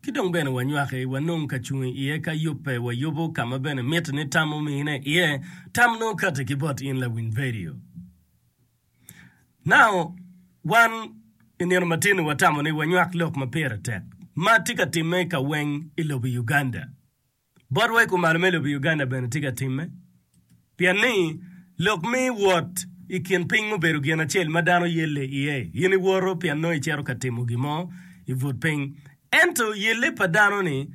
Ki dong bene wanywaki, wanong ka cung i iye ka yubbe, wayubo ka ma bene mitte ni tam omine iye. Tam nongo kati ki bot in lawiny redio. Now, wan i nino matin-ni watamo ni wanywak lok ma pire tek ma tye ka timme ka weng i lobo Uganda. Botwa i kumalo me lobo Uganda bene tye ka timme pien ni lok me wot i kin piny mubedo gin acel ma dano yelle iye. In iwoto pien nongo icito ka timo gin mo i but piny. Ento yelle pa dano-ni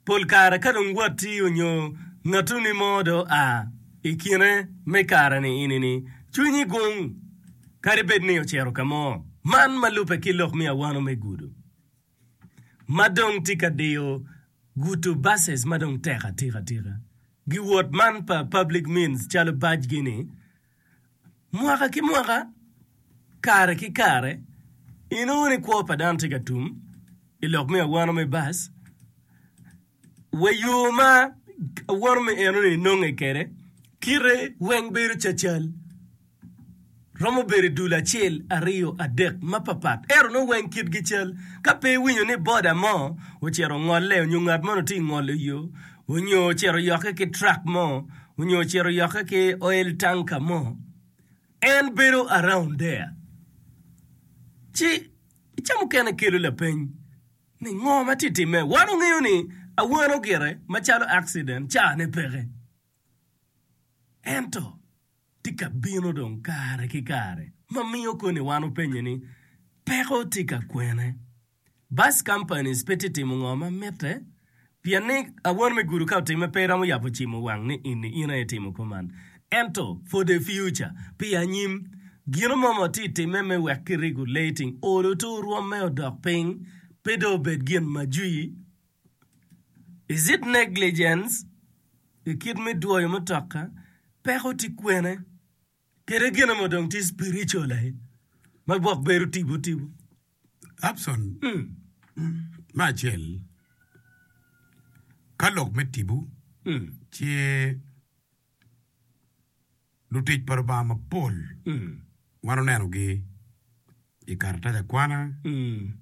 pol kare ka dong watti nyo ngatuni mo dong oa i kine me kare-ni ini-ni, cwinyi gung kadi bed ni ocito ka mo. Man ma lubbe ki lok me awano me gudo. ma dong tye ka diyo guto buses ma dong tek atika tika gi wot man pa public means calo bac gi ni mwaka ki mwaka kare ki kare inongo ni kwo pa dano tye ka tum ilok me awano me bus. Wa yo ma awoto me enoni nonge kwede, kite weng bedo cacal, romo bedo i dul acel, aryo, adek mapapat, ento nongo weng kitgi cal. Ka pe iwinyo ni boda mo ocito ongole onyo ngat moni tye ka ngolo yo, onyo ocito oyokke ki truck mo, onyo ocito oyokke ki oil tanker mo, en bedo around there. Ci ca mukene kelo lapeny. Ningo ma tye timme? Wan ongeyo ni awano gire macalo akciden cane peke. Ento, tye ka bino dong kare ki kare ma miyo koni wan openye ni, Peko tye ka kwene? Bus companies pe tye timo ngo ma mitte Pien ni awon me gudo ka otimme pe iromo yabo cimo wang ni ini in aye itimo kwo man. Ento for the future, pi anyim, gino mo ma watye i timme me wek kirigo lating olo to orwomme odok piny pe dong obed gin ma jwi. Is it negligence? I kit me dwoyo mutoka, peko tye kwene? Kede gin mo dong tye spiritual aye ma gwok bedo tipo tipo. Abson, mm. me acel, ka lok me tipo, mm. ce lutic pa Lubanga mapol mm. wan onenogi i karatac akwana mm.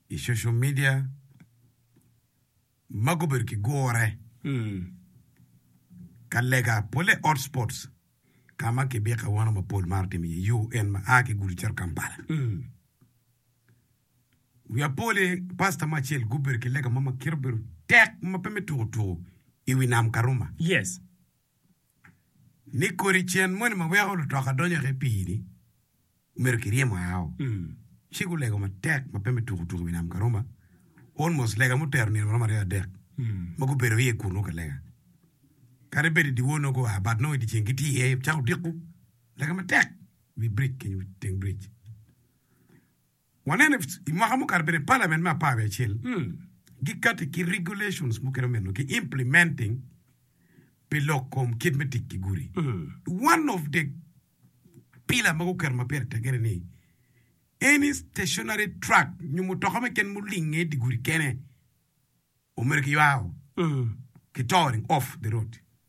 i social media ma gubedo ki gure ka lega polle hot spots ka ma kibika awano ma pol maro timo iye yo en ma a ki Gulu cito Kampala. Wiya polle pasta mo acel gubedo ki lega mo ma kite obedo tek ma pe me tuku tuku i wi nam Karuma. Yes. ni kodi cen moni ma weko lutoka donyo ki i pii-ni omyero kiryemo ao. Ci gulego matek ma pe me tuku tuku i wi nam Karuma, almost lega mutero nino maromo aryo adek ma gubedo iye kunu ka lega. Kadi bed i dyewor nongo gua but nongo i dyeceng gitye iye cako diku lega matek i wi bridge kenyo, teng bridge. Waneno i mwaka mukato bene parliament me apar wiye acel gikati ki regulations mukene omeno ki implementing pi lok kom kit me tic ki gudi. One of the pillar ma guketo ma pire tege ni any stationary truck nyo mutoka me ken mulinge i di gudi kene omeno kiywayo ki towering off the road.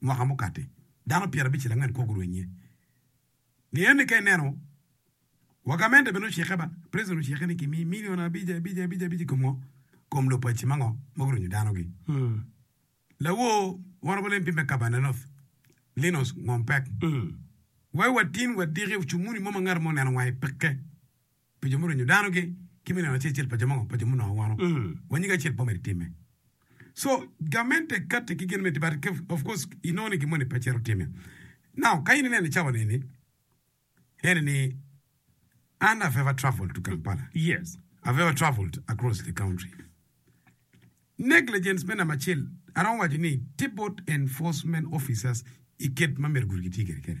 mwaka mukati, dano pyera abicel angwen kwo gurwenyo iye. Ngeye ni ka ineno wagamente bene ocikke ba, president ocikke ni kimi milion abic abic abic abic i kom ngo? Kom lobo paci ma ngo ma gurwenyo dano gi? Lawor Warrant of LNP me Kabarnet North, Linus Ngompec, Wai watin wadiki ocumuni mo ma ngat mo oneno wange peke. pi jo murinyo dano gi ki me neno acel acel pa jo mo pa jo munongo ngwono wa nyige acel po mere time so gamente kati ki gin me tibat ke of course inongo ni gin moni pe cito time now ka in inene cawa neni ene ni an I've ever traveled to Kampala yes I've ever traveled across the country negligence me namba acel aromo waco ni tibot enforcement officers iket ma myero gudi gitye kede kene